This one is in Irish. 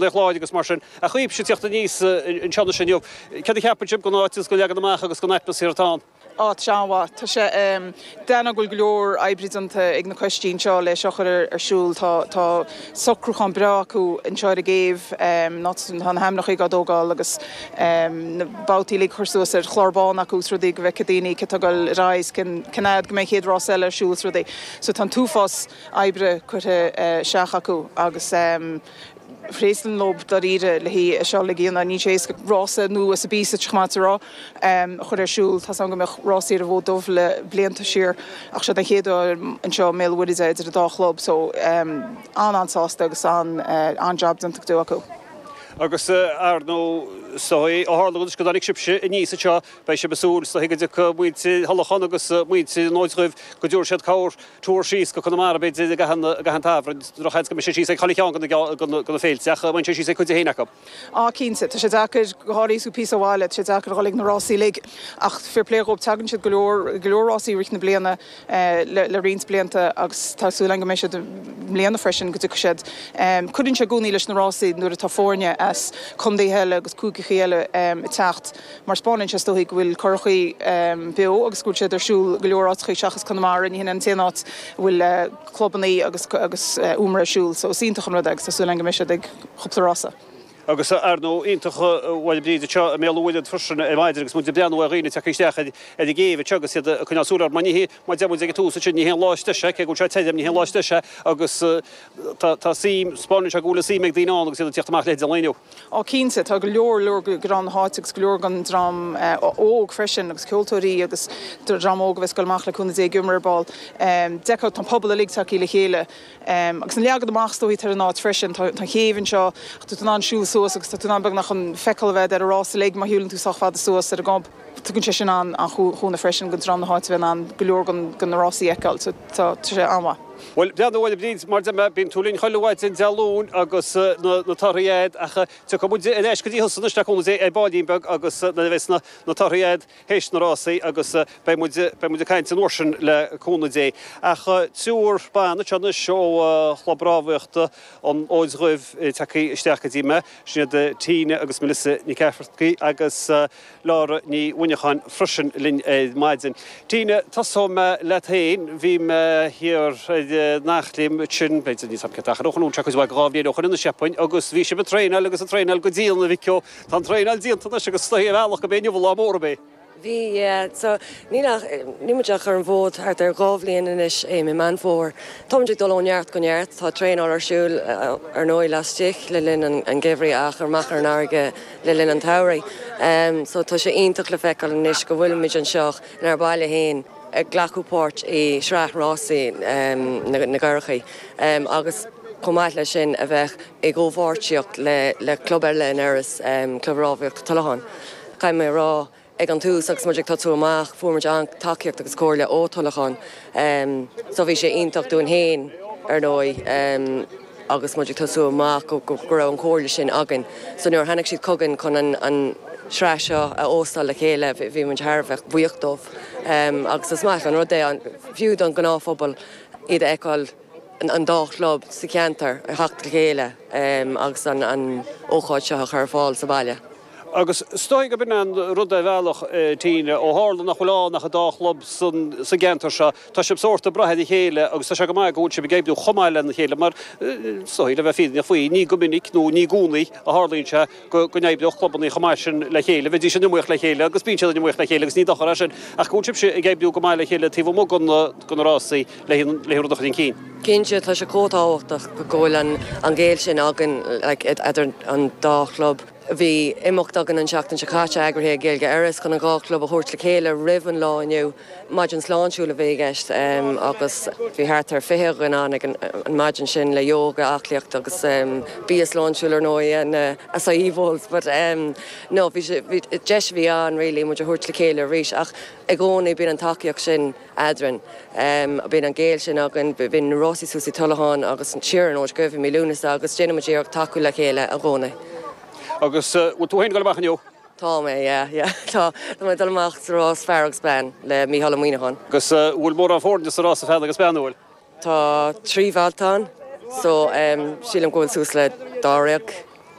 Laoch Láir agus mar sin. Ach tíocht aníos anseo anois inniu. Céard a cheapann sibh den áit agus den leagan amach agus den atmaisféar atá ann? Áit an-mhaith. Tá sé deas ná go bhfuil go leor oibre déanta ag na coistí seo lena chur ar siúl. Tá socrúchán breá acu anseo ar an gcéibh. Ná tá na hainmneachaí á dtógáil agus na babhtaí uilig a chur suas ar chlár bán acu is rudaí go bhfeice daoine cé atá ar ar aghaidh is cén fhad go mbeidh an chéad rás eile ar siúl is rudaí. So tá an t-uafás oibre curtha isteach acu agus. Fair play dóibh dáiríre le hé seo a dhéanamh. Níl sé éasca rása nua sa bpíosa de chomórtas rása a chur ar siúl. Tá's agam go mbíodh rás thiar an Fhóid Duibh le blianta siar ach seo den chéad uair anseo i mBéal an Mhuirthead é idir an dá chlub so an-an-sásta agus an-jab déanta go deo acu. Agus ar ndóigh ó tharla anois go dtáinig sibhse aníos anseo beidh sibh ag súil so go dtiocfaidh muintir Thulacháin agus muintir an Fhóid Dhuibh go dtabharfaidh siad cabhair Turas síos go Conamara, b'fhéidir, i gcaitheamh an tsamhraidh. Drochsheans go mbeidh siad síos ag chuile cheann de na féilte, ach beidh siad síos ag cuid éicint acu. Á, cinnte, tá sé deacair, go háirithe is tú píosa ó bhaile, tá sé deacair a dhul ag na rásaí uilig, ach fair play dhóibh, teagann siad ag go leor, go leor rásaí i rith na bliana le roinnt blianta agus tá súil agam go mbeidh siad i mbliana freisin, go dtiocfaidh siad. Cuireann sé i gcónaí leis na rásaí nuair atá foirne as contaetha eile agus cúigeachaí eile ag teacht. mar 'speáineann sé 's dóigh go bhfuil curachaí beo agus go bhfuil siad ar siúl go leor áiteachaí seachas Conamara, ní shin an t-aon áit a bhfuil clubannaí agus agus iomramh ar siúl so is iontach an rud é agus tá súil agam go mbeidh siad ag cúpla rása. Agus ar ndóigh, iontach an bhail, a Bhríd, anseo i mBéal an Mhuirthead freisin ar maidin agus muid ag breathnú ar dhaoine ag teacht isteach ar ar an gcéibh anseo agus iad ag coinneáil súil air mar ní hé mar deir muid ag an tús ansin ní hé an lá is deise, cé go bhfuil seo tirim, ní hé an lá is deise agus tá tá suim 'speáineann sé go bhfuil an suim ag daoine ann agus iad ag tíocht amach leithéide an lae inniu. Oh cinnte, tá go leor leor de dhream na háite agus go leor den dream óg freisin agus ceoltóirí agus dream óg a bheidh ag dul amach le cúnamh Dé ag iomramh ar ball. So d'fheicfeá tá an pobal uilig tagthaí le chéile agus an leagan amach is dóichí atá ar an áit freisin. Tá an chéibh anseo agus tá tú in ann siúl suas agus tá tú in ann beagnach an feiceáil a bheith ar an rása uilig má shiúlann tú sách fada suas ar an gob. Tugann sé sin an-chúnamh freisin do dhream na háite a bheith in ann go leor de na rásaí a fheiceáil. Tá sé an-mhaith. Bhuel, breathnaigh anois, a Bhríd, mar deir mé, bíonn tú linn chuile mhaidin Dé Luain agus na torthaí agat ach tiocfaidh muid ar ais go dtí thusa anois le cúnamh Dé, ar ballín beag agus nuair a bheas na torthaí agat théis na rásaí agus beidh muid ag caint an uair sin le cúnamh Dé. Ach triúr ban anseo anois ó Chlub Rámhaíochta an Fhóid Dhuibh tagthaí isteach go dtí mé. Sin iad Tina agus Melissa Nic Eachmharcaigh agus. Laura Ní Mhuineacháin freisin linn ar maidin. Tina, tosóidh mé leat féin. Bhí mé thiar in Eachléim ansin, b'fhéidir níos aimce ach ar an cholún seo cuid mhaith dhá bhliain ó shoin nó mar sin agus bhí sibh ag traenáil agus ag traenáil go dian an mhí sin. Tá an traenáil déanta anois agus is dóigh ar bhealach gurb é inniu an lá mór daoibh. Bhí, yeah. So, níl ach, níl muid ach ar an bhfód thart ar dhá bhliain anois i mí Meán Fómhair. Tá muid ag dul ó neart go neart. Tá traenáil ar siúl, ar ndóigh, laistigh le linn an gheimhridh ach amach ar an fharraige. le linn an tsamhraidh so tá sé iontach le feiceáil anois go bhfuilimid anseo in ár baile fhéin ag glacadh páirt i sraith rásaí na gcurachaí agus chomh maith leis sin a bheith i gcomhpháirtíocht le club eile in Iorras, Club Rámhaíochta Tullachán. Caithfidh mé a rá Ag an tús agus muid ag tosú amach fuair muid an-tacaíocht agus comhairle ó Tullachán so bhí sé iontach dúinn féin ar ndóigh agus muid ag tosú amach go raibh an chomhairle sin againn so nuair a tháinig siad chugainn chun an tsraith seo a óstáil le chéile bhí muid thar a bheith buíoch dóibh agus is maith an rud é fiú don ghnáthphobal iad a fheiceáil an dá chlub sa cheantar a theacht le chéile agus an ócáid seo a chur ar fáil sa bhaile. Agus is dóigh gurb in an rud ar bhealach, Tina, ó tharla nach bhfuil ann ach an dá chlub sa gceantar seo, tá siad sórt ag brath ar a chéile agus tá sé go maith go bhfuil siad ag oibriú chomh maith lena chéile mar is dóigh, le bheith fírinneach faoi, ní go minic nó ní gcónaí a tharlaíonn sé. go n-oibreodh clubanna chomh maith sin le chéile. Bheidís in iomaíocht le chéile agus bíonn siad in iomaíocht le chéile agus ní dochar é sin ach go bhfuil sibhse ag oibriú go maith le chéile taobh amuigh den den rásaí le le rud a chur chun cinn. Cinnte, tá sé chomh tábhachtach go bhfuil an an gaol sin againn like idir an dá chlub. Bhí imeacht againn an seachtain seo caite eagraithe ag Gaeilge Iorras chun an dhá chlub a thabhairt le chéile roimh an lá inniu. Maidin sláintiúil a bhí i gceist agus bhí thart ar 20 dhuine ann ag an maidin sin le yoga, aclaíocht agus bia sláintiúil ar ndóigh na acai bowls but no deis a bhí ann really muid a thabhairt le chéile arís ach i gcónaí bíonn an tacaíocht sin eadrainn, bíonn an gaol sin againn, bíonn rásaí thuas i dTullachán agus thiar in Oiligh i mí Lúnasa agus déanann muid iarracht tacú le chéile i gcónaí. Agus bhfuil tú féin ag dul amach inniu? Tá mé, yeah, yeah. Tá. Tá mé ag dul amach sa rás fear agus bean le Mícheál Ó Muíneacháin. Agus an bhfuil mórán foirne sa rása fear agus bean, an bhfuil? Tá trí bhabhta ann so sílim go bhfuil suas le dáréag.